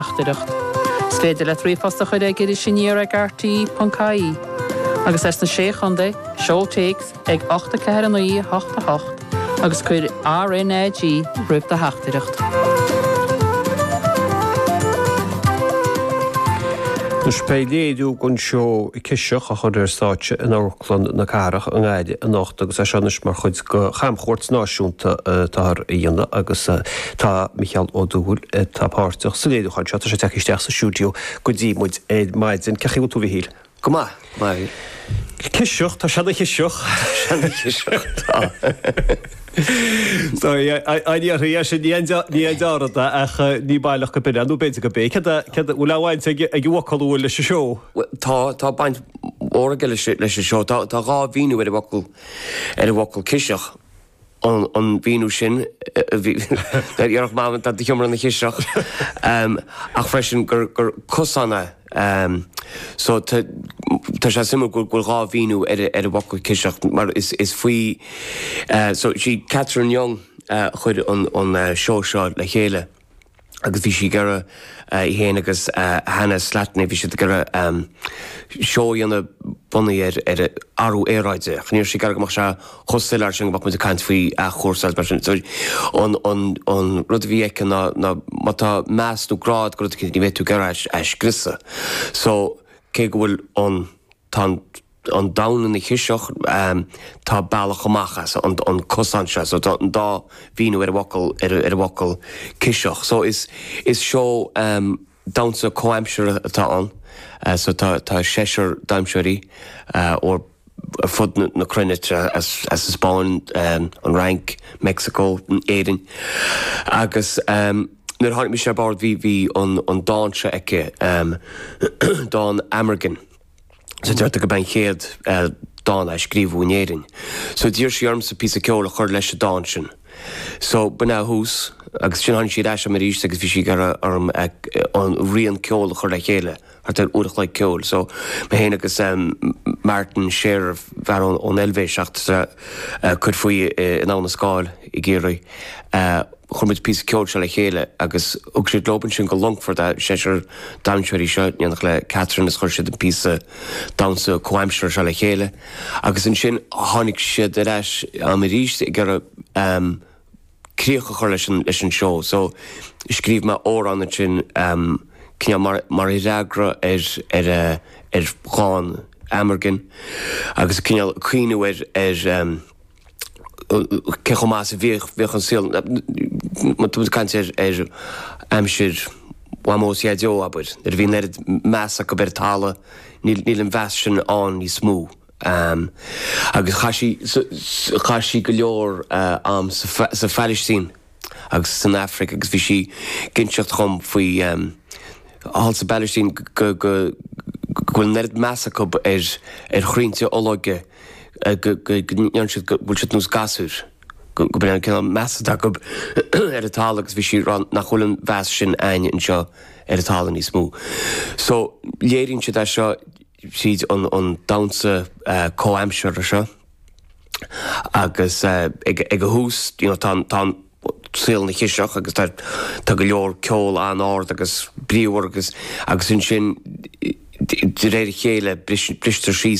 theachtaireacht. Is féidir leat ríomhphost a chur ag Iris Aniar ag RTÉ.ie agus as na Sé Chontae, seol téacs chuig 84988 agus cuir RNAG roimh do theachtaireacht. Beifear ag léiriú an seó Ciseach a chur ar stáitse in Amharclann. Clann na Cathrach i nGaillimh anocht agus é seo anois mar chuid de chamchuairt náisiúnta atáthar a dhéanamh agus tá Micheál Ó Dúill atá páirteach sa léiriúchán seo. Tá sé ag teacht isteach sa stiúideo go dtí muid ar maidin. Cén chaoi a bhfuil tú, a Mhichíl? Go maith, a Mháirín. Ciseach, tá sé ina chiseach. Tá sé ina chiseach, tá. Tá, an iarrthaí é sin, ní an deartha ach ní baileach gob é, nó b'fhéidir gob é. Cén bhaint atá ag an bhfocal a bhfuil leis an seó? Tá baint mhór aige leis an seó. Tá dhá mhíniú ar an bhfocal ciseach, an míniú sin a déarfadh Mam tá do sheomra ina chiseach, ach freisin gur cosán é. Só, tá sé suimiúil go bhfuil dhá mhíniú ar an bhfocal ciseach mar is faoi, só, sí Catherine Young a chuir an seó seo le chéile. agus bhí sí ag iarraidh í féin agus Hannah Slattery, bhí siad ag iarraidh seó a dhéanamh bunaithe ar ar athrú aeráide. Ach ní raibh sí ag iarraidh go mbeadh sé chomh soiléir sin go mbeadh muid ag caint faoi athchúrsáil is mar sin. So an an an rud a bhí aici ná ná má tá meas nó grá agat do rud éicint ní bheidh tú ag iarraidh é a scriosadh. So cé go bhfuil an. Tá an domhan ina chiseach. Tá bealach amach as, an cosán seo. So tá an dá mhíniú ar an bhfocal, ar an bhfocal ciseach. So is, is seó damhsa comhaimseartha atá ann. So tá, tá seisear damhsóirí ó ar fud na, na cruinne, as, as an Spáinn, an Fhrainc, Meicsiceo, Éirinn. Agus nuair a tháinig mise ar bord bhí, bhí an, an dán seo aici, dán Amergin. So deirtear gob é an chéad dán a scríobhadh in Éirinn. So d'iarr sí ormsa píosa ceoil a chur leis an dán sin. So b'in é an tús agus ansin tháinig sí ar ais a'm arís agus bhí sí ag iarraidh orm an rian ceoil a chur le chéile thart ar uair a chloig ceoil. So mé féin agus Martin Scherer, fear ón Eilvéis, atá ag cur faoi in Abhainn na Scáil i gCiarraí. Chuir muid an píosa ceoil seo le chéile agus thug siad leob ansin go Longfort a' seisear damhsóirí seo in éineacht le Catherine is chuir siad an píosa damhsa comhaimseartha seo le chéile agus ansin tháinig siad ar ais a'm aríst ag iarraidh ehm críoch a chur leis an, leis an seó so scríobh mé amhrán ansin ehm cineál mar, mar fhreagra ar, ar eh, ar dhán Amergin agus cineál ag cuimhniú ar, ar ehm. cé chomh maith is a bhíodh, bhíodh an saol, má tá muid ag caint ar, ar aimsir Mhamó is Dhaideo, abair, nuair a bhí an oiread meas acu ar an talamh, níl, níl an meas sin ann níos mó. Agus chaith sí, chaith sí go leor ama sa, sa Phailistín. agus san Aifric agus bhí sí ag inseacht dhom faoi thall sa bPailistín go bhfuil an oiread meas acu ar ar chroinnte olóige go ndéann siad go bhfuil siad nós gasúir go bhfuil an cineál meas acu ar an talamh agus bhí sí ag rá nach bhfuil an meas sin a'inn anseo ar an talamh níos mó. So léiríonn siad é seo tríd an damhsa comhaimseartha seo. Agus ag a thús you know tá tá an saol ina chiseach agus tá tá go leor ceol an-ard agus bríomhar agus agus ansin de réir a chéile bristear síos